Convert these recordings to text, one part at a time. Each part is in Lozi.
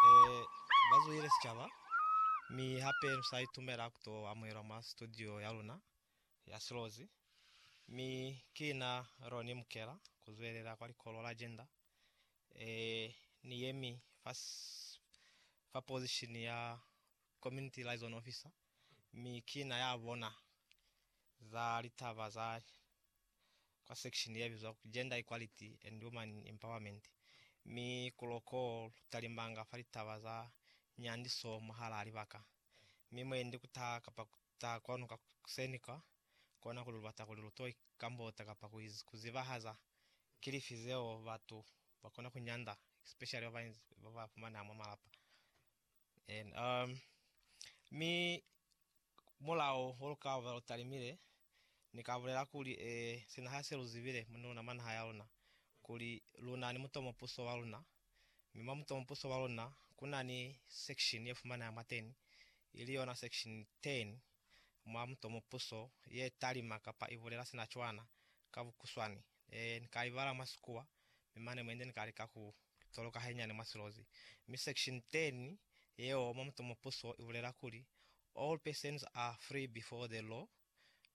eh, ba zuhile sicaba, mi hape lu sa itumela ku to amuhelwa mwa studio ya luna ya Silozi. Mi ki na Ronnie Mukela ku zwelela kwa likolo la Gender. Eh, ni yemi fa, s- fa position ya Community Liaison Officer, mi ki na ya bona za litaba za kwa sekishini ye bizwa ku Gender Equality and Woman Empowerment, mi ku loko lu talimanga fa litaba za nyandiso mwahalaa libaka, mi mwendi ku taha kapa ku taha kwanu ka kuseni kwa kona kuli lu bata kuli lu to ikambota kapa ku zibahaza ki lifi zeo batu ba kona ku nyanda, especially ba ba fumaneha mwa malapa. Amen. Um, mi mulao ho lukava lutalimile ni ka bulela kuli e sina ha se luzibile muni luna manaha ya luna kuli luna ni mutomo puso wa luna mi mwa mutomo puso wa luna kuna ni section ye fumanaha mwateni ili yona section 10 mwa mutomo puso ye talima kapa ibulela sina cwana ka bukuswani Ne ni ka i bala mwa Sikuwa, mi mane mwendi ni ka lika ku toloka hainyiani mwa silozi. Mi section 10 yeo mwa mutumo puso i bulela kuli, All persons are free before the law.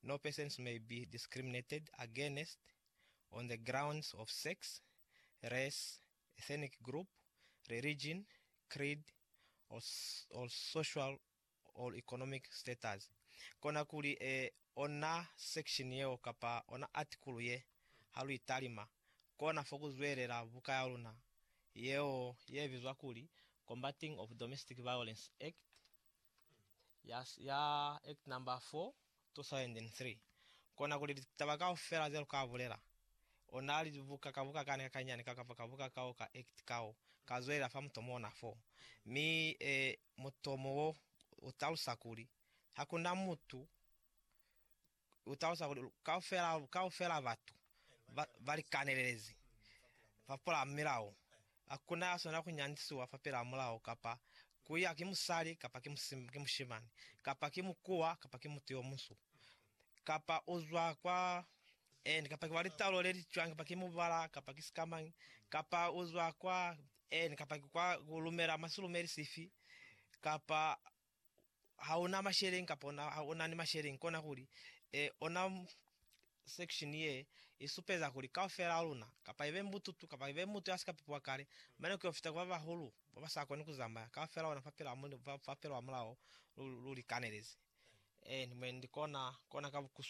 No persons may be discriminated against on the grounds of sex, race, ethnic group, religion, creed, or social or economic status, kona kuli e ona section yeo kapa ona article ye, ha lu italima, kona fo ku zwelela buka ya luna yeo ye bizwa kuli Combating of Domestic Violence Act ya, ya Act number 4, 2003. Kona kuli litaba kaufela ze lu ka bulela, ona libuka ka buka kani ka kanyani kao kapa ka buka kao ka act kao, ka zwelela fa mutomona fo, mi e Mutomo wo u talusa kuli, Ha ku na mutu, u talusa kuli kaufela, kaufela batu ba, ba likanelelezi, ba pula milao. Ha ku na ya swanela ku nyandisiwa fapilaa mulao, kapa ku ya ki musali, kapa ki, ki mushimani, kapa ki mukuwa, kapa ki mutu yo munsu. kapa u zwa kwa Eni, kapa ki wa litaulo le li cwang, kapa ki mubala, kapa ki sikamañi, kapa u zwa kwa Eni, kapa ki kwa ku lumela mwa silumeli sifi, kapa ha una masheleñi, kapa una, ha una ni masheleñi, kona kuli, e, ona section ye i supeza kuli kaufela luna, kapa ibe mbututu, kapa ibe mutu ya si ka pipiwa kale, mane ku yo fita kwa ba bahulu, Ba ba sa koni ku zambaya kaufela ona fa pela, fa pela wa mulao lu, lu li kanelezi. Ee, ni mwendi kona, kona ka bukuswa.